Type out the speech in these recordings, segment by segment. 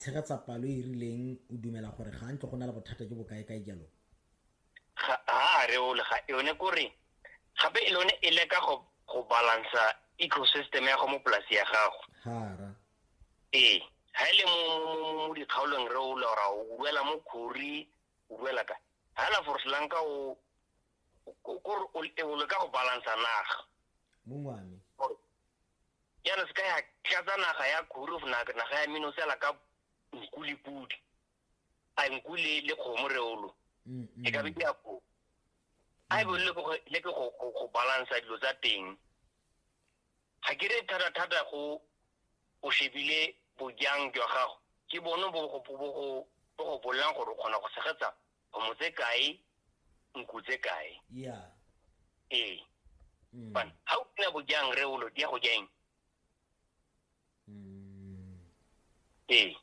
tshegetsa palo e e rileng o dumela gore ga ntlo go na le bothata jo bo kae-kae jalo ga a reole ga yone kore gape e lone e leka go go balansa ecosystem ya go mo polasi ya gago hara ee ha ile e mo mo mo dikgaolong re o lora o buela mo khori o buela ka ha la for slang ka o ko o le ka go balansa naga mongwane yana se ka ya tlatsa naga ya kurufu naga ya mino sela ka nku le pudi a nku le le kgomo reolo mm, mm. e ka be ke ya ko a e bone le ke go balansa dilo tsa teng ga ke re thata-thata go o shebile bojang jwa gago ke bone bo go bolelang gore o kgona go tshegetsa kgomo tse kae nku tse kae ya ee mm. fana ga o sena bojang re olo di ya go jang mm. ee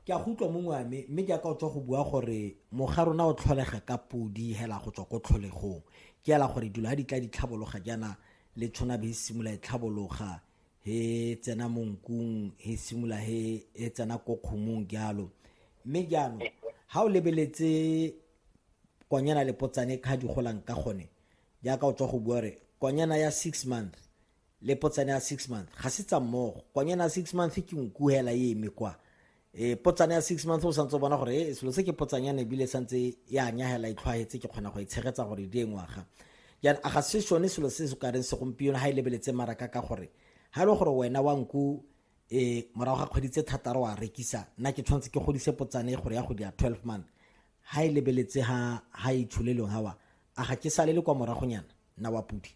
ke a go utlwa mongwe ame mme jaaka o tswa go bua gore moga rona o tlholega ka podi hela go tswa ko tlholegong ke ela gore dilo ga di tla di tlhabologa jaana le tshwana be e simolola e tlhabologa he tsena mo nkung he simula he he tsena ko kgomong jalo mme jaanong ha o lebeletse konyana le potsane kha di golang ka gone jaaka o tswa go bua re konyana ya six month le potsane ya six month ga se tsa mmogo konyana ya six month ke nkuhela e eme kwa e potsana ya six months o santse o bona gore e selo se ke potsanyana ebile santse e a nyagela e tlhwaetse ke kgona go e tshegetsa gore e di e ngwaga jaanong a ga se sone selo se se kareng segompieno ga e lebeletse maraka ka gore ga e le gore wena wa nku e morago ga kgwedi tse thataro wa rekisa nna ke tshwanetse ke godise potsane e gore ya go di ya twelve month ga e lebeletse ga ga e tsholelong gawa a ga ke salele kwa moragonyana nna wa pudi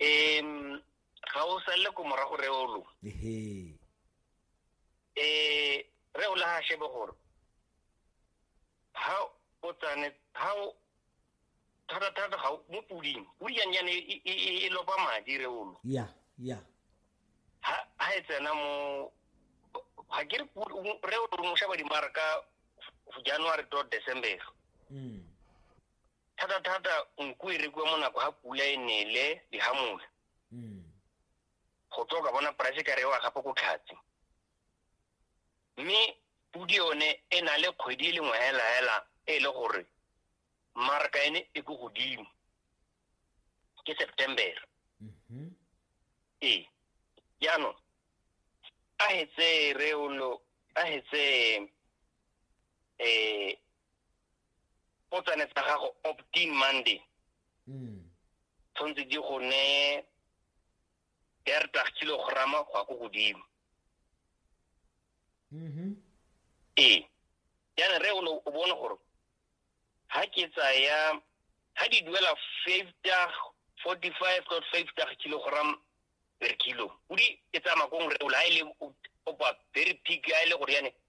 um ga o salele ko morago reolo ehe eh re o laha shebe gore ha o tsane ha o thata thata ga mo puding pudi yang yana e, e, e, e lopa madi re olo ya ya ha ha e tsena mo ha ke re re o mo shaba dimarka january to december mm thata thata nku e rekwa mo nako ha pula e nele dihamole mm go tswa ka bona price ka rewa gape ko tlhatsi mme pudi yone e na le kgwedi e lengwe hela hela e le gore marka ene e ko godimo ke september mhm. ee jaanong a hetse reolo a hetse um potsane tsa gago optin monday mm. tshwanetse di go ne dertag kilograma go ya ko godimo mm-hmm. ee yana re o bone gore ha ke tsaya ha di duela five tag forty five dot five tag kilogram per kilo o di e tsamaya kong re o la ha e le opa very peak ha e le gore yane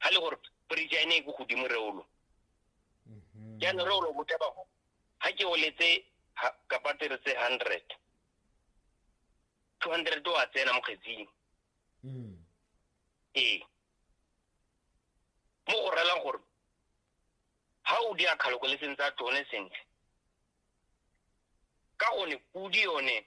ga le gore bridge ya ene e ko godimo reolo mhm. jaanong reolo bote bago ga ke oletse kapatire tse hundred two hundred o a tsena mo kgetsing mm. ee mo go relang gore ga o di akgalokoleseng tsa tone sentle ka gone pudi yone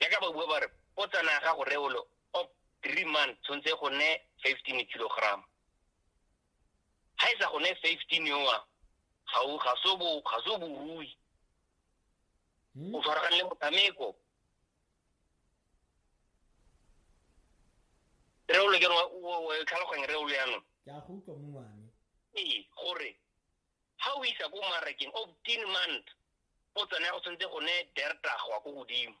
jaaka ba bua ba re o tsena ya gago reolo of three months tshwanetse go ne fifteen kilogram ga e sa go ne fifteen yoa ga o ga so bo ga so borui Hmm? o tshwaragane le motshameko reolo ke rona o tlhaloganye reolo yanong ke a go utlwa mongwane ee gore ga o isa ko marakeng of ten month go tsone go tshwanetse go ne dertagwa ko godimo